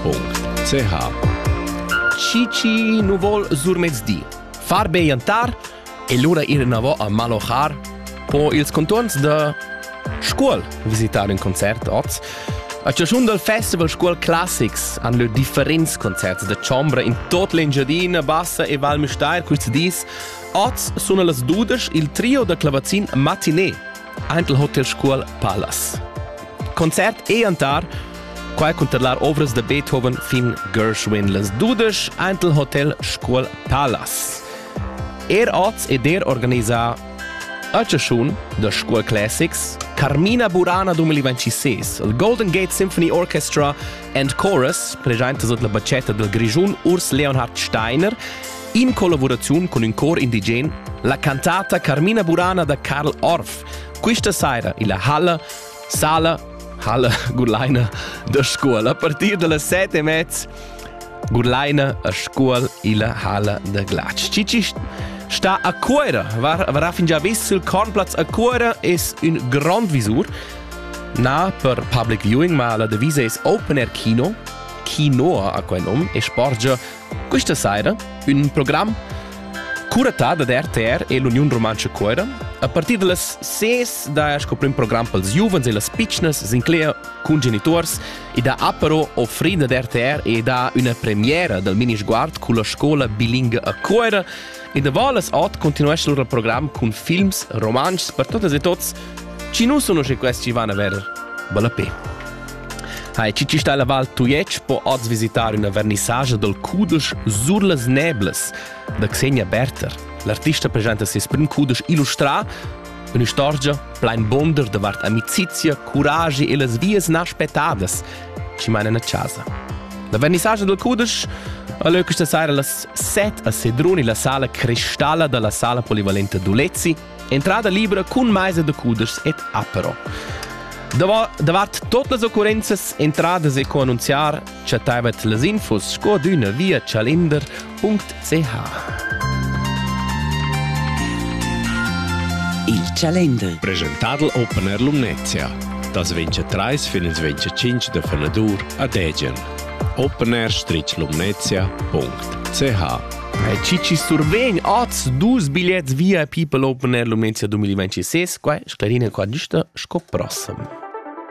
www.ch Chi chi nu vol surmezdi far be jantar e lura ir enavò a malochar po ils conturns da Scuol visitare un concert oz. A chaschun dal Festival Scuol Classics han lö differents concerts da chombra in tot l'Engiadina Bassa e Val Müstair quist dis. Oz sun las dudesch il trio da clavazin Matinee, aint il Hotel Scuol Palace. Concert e antar Qua cunterlar ovras da Beethoven fin Gershwin las dudesch ant il hotel Scuol Palace. Er oz ed er organisà a chaschun da Scuol Classics Carmina Burana 2026, il Golden Gate Symphony Orchestra and Chorus, presenta sut la bacetta del Grischun Urs Leonhard Steiner, in collaboraziun con un cor indigen, la cantata Carmina Burana da Karl Orff. Questa saira illa halla Sala, Halle, Gurlaina da scuola. A partir dalla set e mezz Gurlaina a scuol illa Halle da Glatsch. Cici sta a Cuera, varà fin già vis il Cornplatz a Cuera, es ün grond visur. Na per public viewing, ma la devisa es Open Air Kino, Kino a quel nom, e sporgia Questa saira ün program curatà da RTR e l'Uniun Rumantscha Cuira. A partir da las 6 da sco prim program pels giuvens e las pitschnas s'inclegia cun genituors ed ha apero offrida da RTR e dà üna premiera dal mini sguard culla scola bilinga a Cuira. E da Valas Ot continuescha lur program cun films romanschs per totas e tots. Ci nu sono che questi van a verer. Bella pe! Hai, chi ci sta la Val Tujetsch po oz visitar una vernissagia dal cudesch Sur las Neblas da Xenia Berter. L'artista presenta ses prim cudesch illustrà, un'istorgia plain bonder davart amicizia, curagi e las vias naspettadas ci manan a casa. La vernissagia dal cudesch Alö questa sera las 7 a Sedrun la sala cristalla dalla sala polivalente Dulezzi Entrada libra cun maisa da cudeschs ed apero. Davart tot las occurrenzas entradas e co annunziar, chattaivat las infos sco d'üna via chalender.ch. Il Chalender. Presentadl Opener Lumnezia. Das ventscha trais fin ins ventscha cinc da fenadur a Degen. opener-lumnezia.ch Vai, chi chi survegn oz dus bigliets via People Open Air Lumenzia 2026, quai sclarina qua giusta sco prossem.